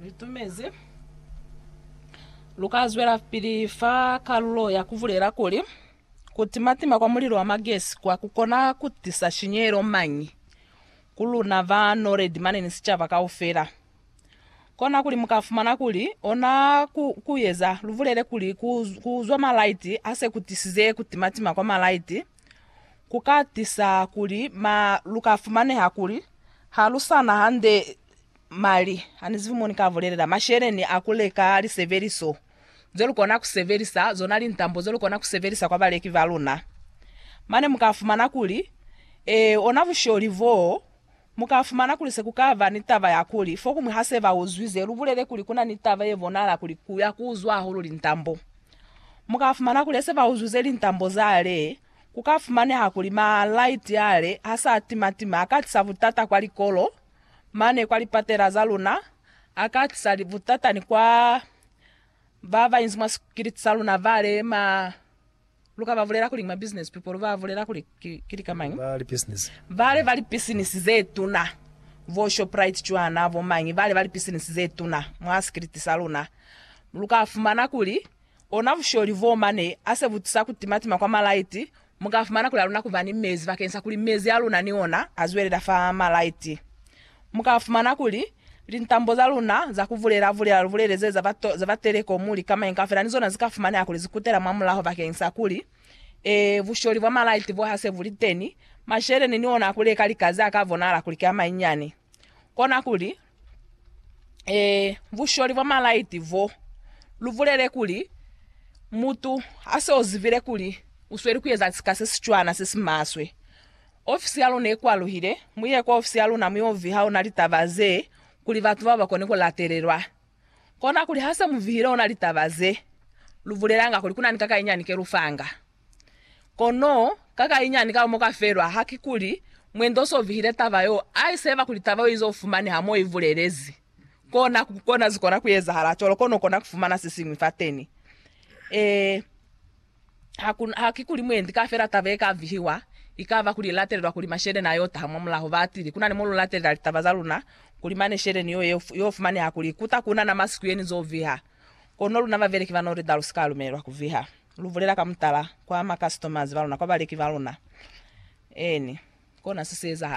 Ni tumezi lu ka zwelapili fa kalulo ya ku bulela kuli, Ku timatima kwa mulilo wa magesi kwa ku kona ku tisa shinyehelo mañi ku luna ba Noledi mane ni sicaba kaufela? Kona kuli mu ka fumana kuli ona ku, ku eza lu bulele kuli ku, ku uzwa malaiti a se ku tisize ku timatima kwa malaiti ku ka tisa kuli ma, lu ka fumaneha kuli ha lu sa na hande Mali a ni zibi mo ni ka bulelela masheleni a ku leka lisebeliso ze lu kona ku sebelisa, zona lintambo ze lu kona ku sebelisa kwa baleki ba luna. Mane mu ka fumana kuli, Ee, ona busholi boo. Mu ka fumana kuli se ku ka ba ni taba ya kuli, fokuñwi ha se ba uzwi ze lu bulele kuli ku na ni taba ye bonahala kuli ku ya ku uzwa hahulu lintambo. Mu ka fumana kuli he se ba uzwize lintambo za le, ku ka fumaneha kuli ma light a le ha sa tima-tima a ka tisa butata kwa likolo mane kwa lipatela za luna, a ka tisa butata ni kwa ba ba inzi mwa sikiliti sa luna ba le ma. Lu ka ba bulela kuli ki ma business people, lu ba bulela kuli ki, ki lika mañi? Ba lipisinisi. Ba le ba lipisinisi ze tuna, bo Shoprite cwana, bo mañi, ba le ba lipisinisi ze tuna mwa sikiliti sa luna. Lu ka fumana kuli ona busholi boo mane a se bu tisa ku timatima kwa malaiti, Mu ka fumana kuli haluna kuba ni mezi bakeng sa kuli mezi a luna ni ona a zwelela fa malaiti. Mu ka fumana kuli lintambo za luna za ku bulela-bulela lubulele ze za ba telekomu li kamañi kaufela ni zona zi ka fumaneha kuli zi kutela mwa mulaho bakeng sa kuli, ee, busholi bwa malaiti bo ha se bu li teni, masheleni ni ona a ku leka likazi a ka bonahala kuli ki a manyinyani. Kona kuli, e, busholi bwa malaiti bo lu bulele kuli, Mutu ha se o zibile kuli u sweli ku eza sika se si cwana se si maswe. Ofisi ya luna i kwaluhile, mu ye kwa ofisi ya luna mu yo viha ona litaba ze kuli batu bao ba kone ku latelelwa. Konakuli ha se mu vihile ona litaba ze, lu bulelanga kuli ku na ni kakayinyani ke lu fanga. Kono ka kainyani ka mo ka felwa, ha ki kuli mwendo so vihile taba yo, ai seba kuli taba yo izo fumaneha mo i bulelezi. Kona, kona zikona ku ezahala cwalo, kono ukona ku fumana se siñwi fateni. Ee, ha ku, ha ki kuli mwendi kafela taba ye ka vihiwa, ikaba kuli i latelelwa kuli masheleni a yo taha mwa mulaho. Batili, kuna ni mo lu latelela litaba za luna, kuli mane sheleni yo ye, yo fumaneha kuli ikuta kuna na masiku ye ni zo viha. Kono luna babeleki ba Norida lu si ka lumelelwa ku viha. Lu bulela ka mutala kwa ma customers ba luna, kwa baleki ba luna. Eeni, kona se si ezahala.